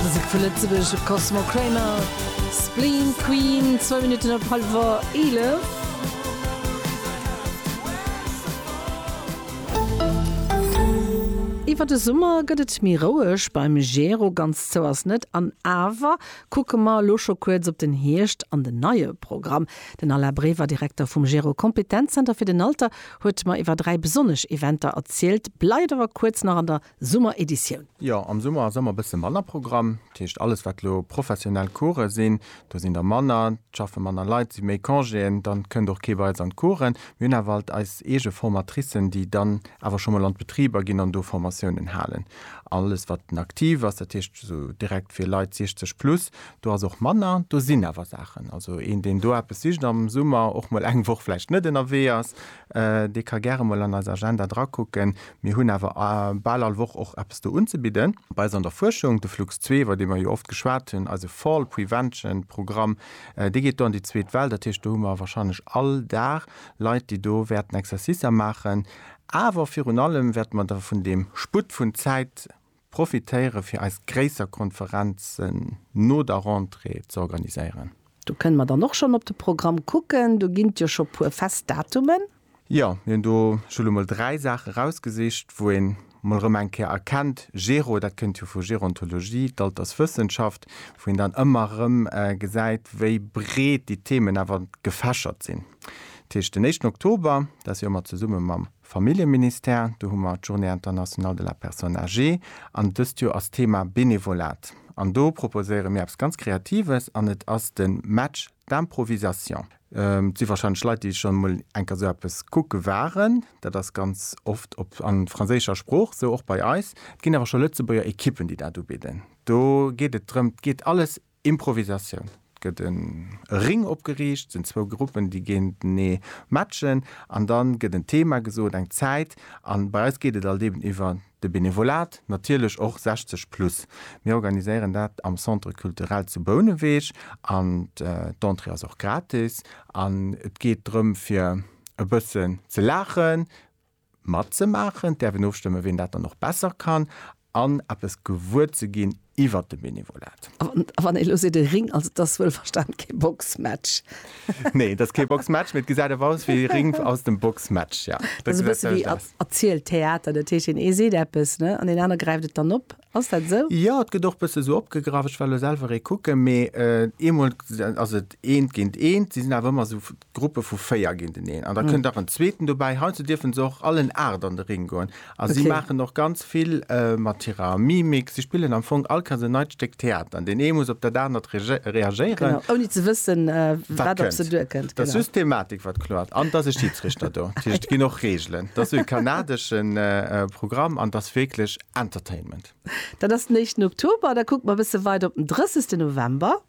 Musek vu Lëtzebuerg op Cosmo Kramer, Spleen Queen, zwou Minutten op hallwer 11. Iwwer de Summer gëtt et méi roueg beim Gero, ganz zou ass net. An awer kucke mer elo scho kuerz op den Hierscht an den neie Programm. Den Alain Brever, Direkter vum Gero Kompetenzzenter fir den Alter, huet mer iwwer dräi besonnesch Eventer erzielt. Bleift awer kuerz nach an der Summereditioun. Jo, am Summer ass ëmmer bësse manner Programm. Dat heescht, alles wat elo professionell Course sinn, do sinn der manner, et schaffe manner Leit, et si méi Congéen, dann kënnt och kee bei eis an d'Coursen. Mir hunn awer alt eis eege Formatricen, déi dann awer scho mol an d'Betriber ginn an do Formatiounen halen. Alles wat den Active ass, dat heescht esou direkt fir Leit 60 plus, do ass och manner. Do sinn awer Saachen, also een deen do eppes sicht am Summer, och mol eng Woch vläicht net ënnerwee ass, Dee ka gäre mol an eis Agenda drakucken. Mir hunn awer bal all Woch och eppes do unzebidden. Bei eis an der Fuerschung, de Flux zwee, iwwer dee mer jo oft geschwat hunn, eise Fall Prevention Programm, dee geet do an déi zweet Well. Dat heescht, do hu mer wahrscheinlech all Dag Leit, déi do wäerten Exercicer maachen. Awer virun allem wäerte mer da vun deem Sputt vun Zäit Profitéiere fir eis gréisser Konferenzen no der Rentrée ze organiséieren. Do kënne mer dann och schonn op de Programm kucken. Do ginn et jo scho puer fest Datumen. Jo, mir hunn do scho lo mol dräi Saache erausgesicht, wou een mol erëm eng Kéier erkennt, Gero, dat kënnt jo vu Gerontologie, d'Alterswëssenschaft, wou een dann ëmmer erëm gesäit, wéi breet déi Themen awer gefächert sinn. Dat heescht den éischten Oktober, dat Joer mat zesumme mam. Familljeministère, do hu mer d'Journée internationale de la personne âgée an dëst Joer ass d'Thema Benevolat an do proposéiere mir eppes ganz Kreatives an et ass de Match d'improvisation. Et si warscheinlech Leit, déi schonn emol eng Kéier esou eppes kucke waren. Dat ass ganz oft op a franséischer Sprooch, sou och bei eis. Et ginn awer scho Lëtzebuerger Ekippen, déi dat ubidden. Do geet et drëm, et geet alles Improvisatioun, et gëtt e Ring opgeriicht, et sinn zwou Gruppen, déi géintenee matchen an dann gëtt en Thema gesot, eng Zäit an bei eis geet et alt eben iwwer de Benevolat, natierlech och 60 plus. Mir organiséieren dat am Centre Culturel zu Bouneweg an d'Entrée ass och gratis an et geet drëm fir e bëssen ze laachen, matzemaachen, d'äerfen ofstëmme ween dat dann och besser kann, an eppes gewuer ze ginn iwwert de Benevolat. A wann ee elo seet, e Ring, also et ass wuel verstan kee Boxmatch. Nee, et ass kee Boxmatch, mee et gesäit awer aus wéi e Ring aus dem Boxmatch, jo. Dat ass e bësse wéi erzielt Theater, dat heescht een ee seet eppes, ne, an deen aner gräift et dann op. Ass dat esou? Jo, et gëtt och bësse esou opgegraff, ech war elo selwer ee kucken, mee eemol ass et eent géint eent, si sinn awer ëmmer esou Gruppe vu 4 ginn den een an da kënnt nach en zweeten dobäi. Hei zu dierfen se och allen 8 an de Ring goen a si maachen och ganz vill mat hirer Mimik. Si spillen am Fong all keng en neit Stéck Theater an deen ee muss op dat anert reagéieren, ouni ze wëssen, wat op se duerkënnt. Dat ass just d'Thematik, wat kloert an et ass e Schidsrichter do. Dat heescht, et ginn och Reegelen. Dat ass e kanadesche Programm an et ass wierklech Entertainment. Dat ass den éischten Oktober. Da kucke mer e bësse weider op den 30. November.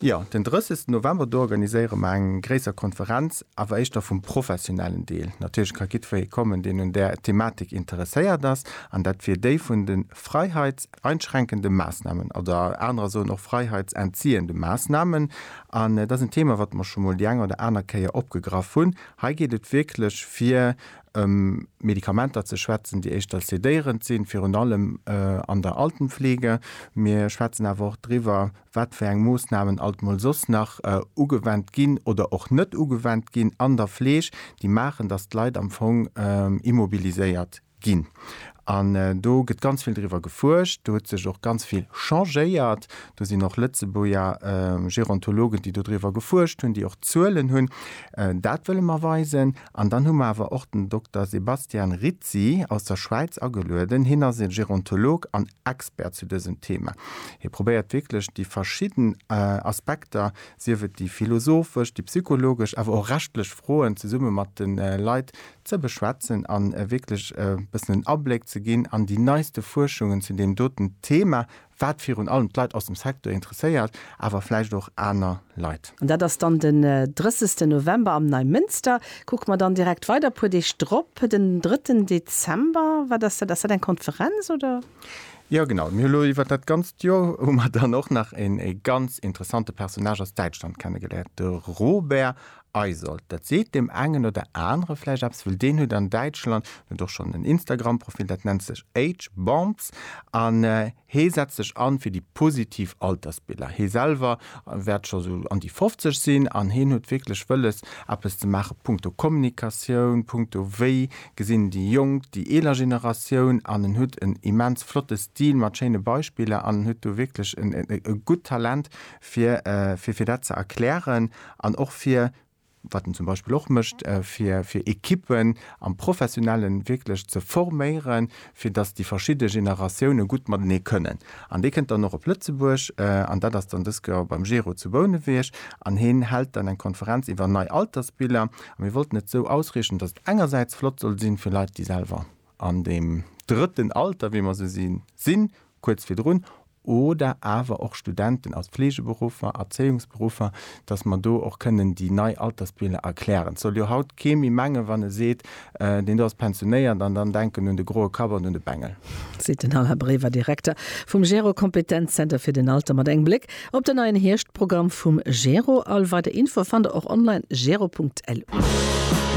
Jo, den 30 November, do organiséiere mer eng gréisser Konferenz, awer éischter vum professionellen Deel. Natierlech ka jiddweree kommen, deen un där Thematik interesséiert ass, an dat wier déi vun de freiheitseinschränkende Maßnahmen, oder anerer soen och freiheitsentziehende Maßnahmen. An et ass en Thema, wat mer scho mol déi eng oder aner Kéier opgegraff hunn. Hei geet et wierklech fir ëm Medikamenter ze schwätzen, déi éischter sedéierend sinn, virun allem an der Altenpflege. Mir schwätzen awer och driwwer, wat fir eng Moossnamen alt mol soss nach ugewendt ginn oder och net ugewendt ginn an der Fleeg, déi maachen, dass d'Leit am Fong immobiliséiert ginn. An do gëtt ganz vill driwwer gefuerscht, do huet sech och ganz vill changéiert, do sinn och Lëtzebuerger Gerontologen, déi dodriwwer gefuerscht hunn, déi och Zuelen hunn. Dat wëlle mer weisen. An dann hu mer awer och den Dokter Sebastian Rizzi aus der Schwäiz agelueden. Hien ass e Gerontolog an Expert zu dësem Thema. Hie probéiert wierklech déi verschidden Aspekter, sief et déi philosophesch, déi psychologesch, awer och rechtlech Froen zesumme mat de Leit ze beschwätzen a wierklech e bëssen en Abléck ze ginn an déi neiste Fuerschungen zu deem doten Thema, wat virun allem d'Leit aus dem Secteur interesséiert, awer vläicht och aner Leit. An dat ass dann den 30 November am Neimënster. Kucke mer dann direkt weider e puer Deeg drop, den 3 Dezember. Wat ass dat? Ass dat eng Konferenz, oder? Jo, genau. Mir hu lo iwwer dat ganzt Joer hu mer dann och nach een ee ganz interessante Personnage aus Däitschland kennegeléiert, de Robert Eisold, dat seet deem engen oder anere vläicht eppes, well deen huet an Däitschland, en huet och schonn en Instagram-Profil, dat nennt sech Age Bombs an hee setzt sech an fir déi positiv Altersbiller. Hee selwer wäert scho sou an déi 50 sinn an heen huet wierklech wëlles, eppes ze maachen punkto Kommunikatioun, punkto wéi gesinn déi Jonk déi eeler Generatioun an en huet en immens flotte Stil mat schéine Beispiller an en huet do wierklech e gutt Talent fir, fir, fir dat ze erklären an och fir, wat en zum Beispill och mécht, fir, fir Ekippen am Professionellen wierklech ze forméieren, fir datt déi verschidde Generatioune gutt matenee kënnen. An dee kënnt dann och op Lëtzebuerg, an dat ass dann dës Kéier beim Gero zu Bouneweg, an hien hält dann eng Konferenz iwwer nei Altersbiller. A mir wollten et esou ausriichten, datt et engersäits flott soll sinn, fir Leit, déi selwer an deem drëtten Alter, wéi mer se sinn, sinn, kuerz virdrun, oder awer och Studenten aus Fleegeberuffer, Erzéiungsberuffer, datt mer do och kënnen déi nei Altersbilder erklären. Et soll jo haut kee méi mengen, wann e seet, deen do ass pensionéiert, an dann denken un de groe Kapp an un de Bengel. Seet den Alain Brever, Direkter vum GERO Kompetenzzenter fir den Alter mat engem Bléck op den neien Hierschtprogramm vum GERO. All weider Infoe fannt der och online, gero.lu.